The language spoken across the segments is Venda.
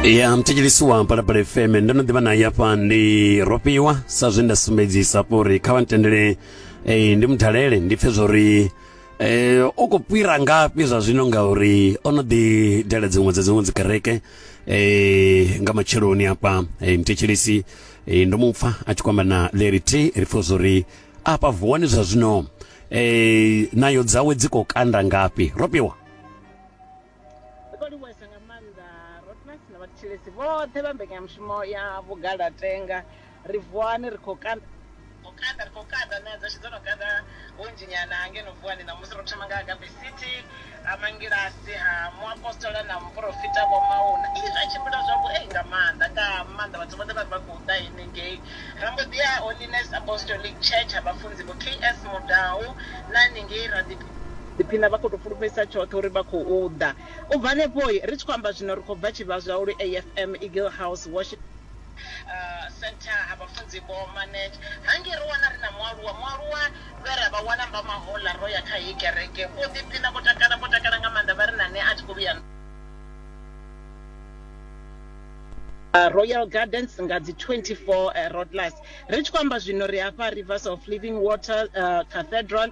ya mthetshelisi wa mpalapala fm ndo no ḓivha naye hafha ndi rofhiwa sa zwe nda sumbedzisa hafho uri kha vha ntendele eh, ndi mudalele ndi pfe zwori eh, u khou fhira ngafhi zwa zwino ngauri o no ḓi dela dziṅwe dza dziṅwe dzikereke eh, nga matsheloni hafha eh, mthetshelisi eh, ndo mu pfa a tshi kwamba na leri t ri pfe zwori afha vuwani zwa zwino eh, nayo dzawe dzi khou kanda ngafhi rofhiwa Ri khou livhuhesa nga maanḓa Rotmas na vhathetshelesi vhoṱhe vha mbekanyamushumo ya Vhugalatenga. Ri vuwani, ri khou kanda, ri khou kanda, ri khou kanda, na dzashu dzo no kanda hunzhinyana ha ngeno vuwani ṋamusi. Ro thoma nga Agape City, ha Mangilasi, ha Muapostola na Muporofita Vho Mauna. Ii, zwa tshimbila zwavhuei nga maanḓa, nga maanḓa. Vhathu vhoṱhe vha ri vha khou ḓa henengei. Ra mbo ḓi ya Holiness Apostolic Church ha Vhafunzi Vho KS Mudau na hanengei ra ḓi. Ḓiphina vha khou tou fulufhedzisa tshoṱhe uri vha khou ḓa. U bva henefho, ri tshi khou amba zwino, ri khou bva tshivhazwau lwe AFM Eagle House Worship. Centre ha Vhafunzi Vho Manage. Hangei ro wana ri na mualuwa, mualuwa vhe ra vha wana Mbamahouḽa ro ya kha heyi kereke. Vho ḓiphina, vho takala, vho takala nga maanḓa, vha ri na nṋe a thi khou vhuya nda. Royal Gardens nga dzi 24 Rotlus. Ri tshi khou amba zwino, ri hafha Rivers of Living Water Cathedral.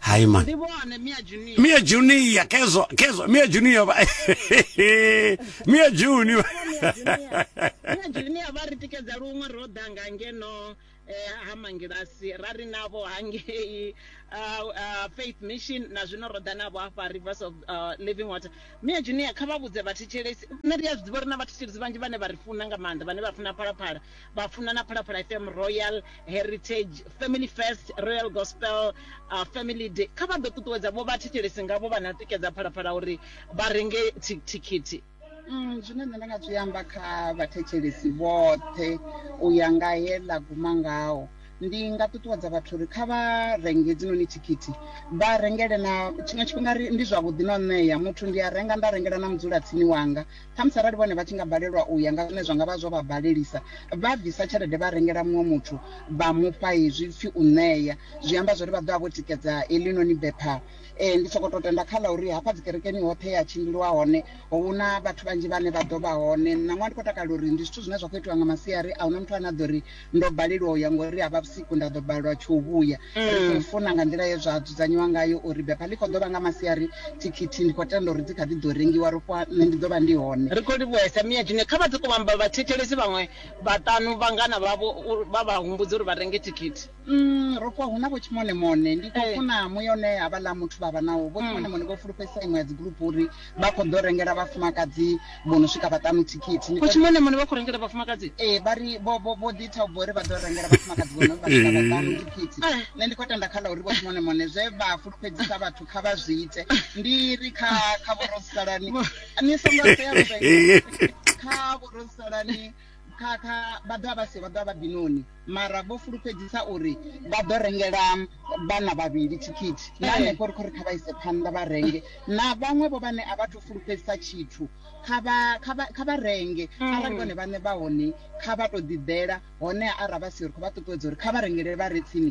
hayi man ndibone mia junior mia junior kezwa kezwa mia junior ba mia junior mia junior vha ri tikedza luṅwe ro ḓa nga ngeno eh, ha mangilasi ra ri navho hangei ah, ah, faith mission na zwino ro ḓa navho hafha rivers of ah, living water mia junior kha vha vhudze vhathetshelesi nṋe ndi a zwi ḓivha uri na vhathetshelesi vhanzhi vhane vha ri funa nga maanḓa vhane vha funa phalaphala vha funa na phalaphala fm royal heritage family first royal gospel uh, family day kha vha ḓo ṱuṱuwedza vho vha thetshelesi ngavho vha na tikedza phalaphala uri vha renge thi- thikhithi Mm, zwine nṋe nda nga zwi amba kha vhathetshelesi vhoṱhe u ya nga he ḽa guma ngaho ndi nga ṱuṱuwedza vhathu uri kha vha renge dzinoni thikhithi vha rengele na tshiṅwe tshifhinga ri- ndi zwavhuḓi na u ṋea muthu ndi a renga nda rengela na mudzulatsini wanga Khamusi arali vhone vha tshi nga balelwa u ya nga zwine zwa nga vha zwo vha balelisa, vha bvisa tshelede vha rengela muṅwe muthu vha mu fha hezwi pfi u ṋea. Zwi amba zwa uri vha ḓo vha vho tikedza heḽinoni bepha. Ndi sokou tou tenda kha ḽa uri hafha dzikerekeni hoṱhe he ha tshimbiliwa hone hu na vhathu vhanzhi vhane vha ḓo vha hone. Ṋaṅwaha ndi khou takalela uri ndi zwithu zwine zwa khou itiwa nga masiari, a hu na muthu ane a ḓo ri. Ndo balelwa u ya ngori ha vha vhusiku nda ḓo balelwa tsho u vhuya. Ri khou funa nga nḓila ye zwa dzudzanyiwa ngayo uri bepha ḽi khou ḓo vha nga masiari, thikhithi ndi khou tenda uri dzi kha ḓi ḓo rengiwa. Ro fhiwa nṋe ndi ḓo vha ndi hone. Ri khou livhuhesa Mia June. Kha vha ḓe Kuvhamba vha thetshelese vhaṅwe vhaṱanu vhangana vhavho vha vha humbudze uri vha renge thikhithi. Umm ro fhiwa hu na Vho Tshimonemone. Ndi khou funa muya une havhaḽa muthu vha vha nawo. Vho Tshimonemone vho fulufhedzisa iṅwe ya dzigrupu uri. vha khou ḓo rengela vhafumakadzi vho no swika vhaṱanu thikhithi kutshi mone mone vha khou rengela vhafumakadzi ee vha ri vho ḓi ita u bva uri vha ḓo rengela vhafumakadzi vho no vha swika vhaṱanu thikhithi eh. nṋe ndi khou tenda kha ḽa uri vhotshi mone mone zwe vha fulufhedzisa vhathu kha vha zwi ite ndi ri kha kha vhorosalani ni songo sea kha vhorosalani Kha, kha vha ḓo vha vha si vha ḓo vha vha binoni, mara vho fulufhedzisa uri vha ḓo rengela vhana vhavhili thikhithi. Na hanefho ri khou ri kha vha ise phanḓa vha renge. Na vhaṅwe vho vhane a vha thu fulufhedzisa tshithu, kha vha, kha vha, kha vha renge. Arali vhone vhaṋe vha hone, kha vha tou ḓiḓela. Honeha arali vha siho, ri khou vha ṱuṱuwedza uri kha vha rengele vha re tsini.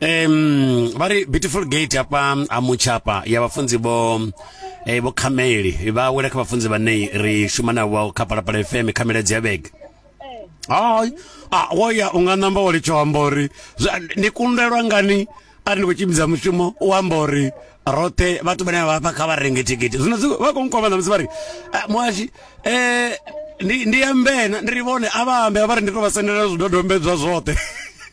um vha ri beautiful gate hafha ha mutshapa ya vhafunzi vho eh, vho khameli vha wela kha vhafunzi vhane ri shuma navho kha palapala fm kha miledzi ya vhege hai a wo ya u nga namba wa litsho amba uri zwa- ni kundelwa ngani ari ni khou tshimbidza mushumo u amba uri roṱhe vhathu vhane vha vha kha vha renge thikhithi zwino zwi- vha khou nkwama ṋamusi vha ri "Ah, muhashi um ndi ndi ambena ndi ri vhone a vha ambe a vha ri ndi tou vha sendela zwidodombedzwa zwoṱhe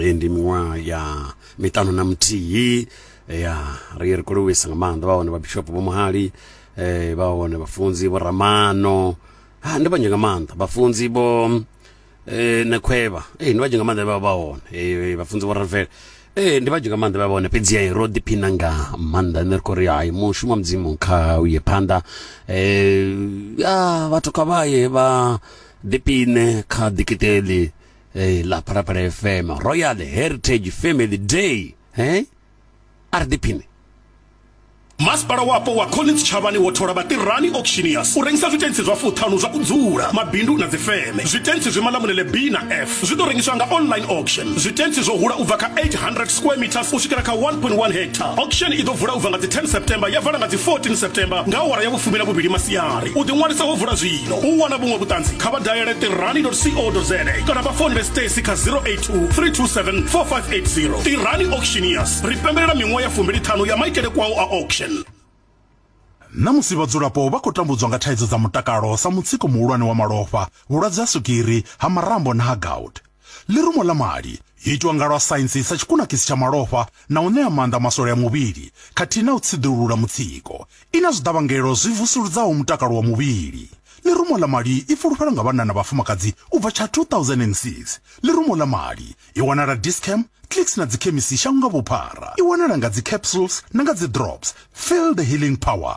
Eh, ndi miṅwaha ya miṱanu na muthihi eh, ya ri ri khou livhuisa nga maanḓa vha hone vhabishop vho muhali eh, vha hone vhafunzi vho ramano ha ndi vhanzhi nga maanḓa vhafunzi vho eh, nekhwevha eh, ndi vhanzhi nga maanḓa vha vha hone eh, vhafunzi vho ravela eh, ndi vhanzhi nga maanḓa vha vha hone fhedzi eh, ro ḓiphina nga maanḓa ene ri khou ri hai mushumo wa mudzimu kha u ye phanḓa eh, ya vhathu kha vha ye vha ḓipine kha dikiteli eh, la phalaphala fm royal heritage family day eh? a ri ḓiphine masipala wapo wa collins tshavhani wo thola vhatirani auctioneers u rengisa zwitentsi zwa fuṱhanu zwa u dzula mabindu na dzifeme zwitentsi zwi malamunele b na f zwi ḓo rengiswa nga online auction zwitentsi zwo hula u bva kha 800 square meters u swikela kha 1.1 hectare auction i ḓo vula u bva nga dzi 10 september ya vala nga dzi 14 september nga awara ya vhufumi na vhuvhili masiari u ḓiṅwalisa ho vula zwi u wana vhuṅwe vhuṱanzi kha vha dalele tirani co za kana vha founele stacy kha 082 327 4580 tirani auctioneers ri pembelela miṅwaha ya fumbiliṱhanu ya maitele kwao a auction na musi vhadzulapo vha khou tambudzwa nga thaidzo dza mutakalo sa mutsiko muhulwane wa malofha vhulwadze ha swigiri ha marambo na ha gout Ḽirumo ḽa mali yo itwa nga lwa saintsi sa tshikunakisi tsha malofha na u ṋea maanḓa maswole a muvhili khathihi na u tsiḓulula mutsiko. I na zwiḓavhangelo zwi vusuludzaho mutakalo wa muvhili. Ḽirumo ḽa mali i fulufhelwa nga vhanna na vhafumakadzi u bva tsha 2006. Ḽirumo ḽa mali i wanala Dis-Chem, Clicks na dzikhemisi shango nga vhuphara. I wanala nga dzicapsules na nga dzidrops. Feel the healing power.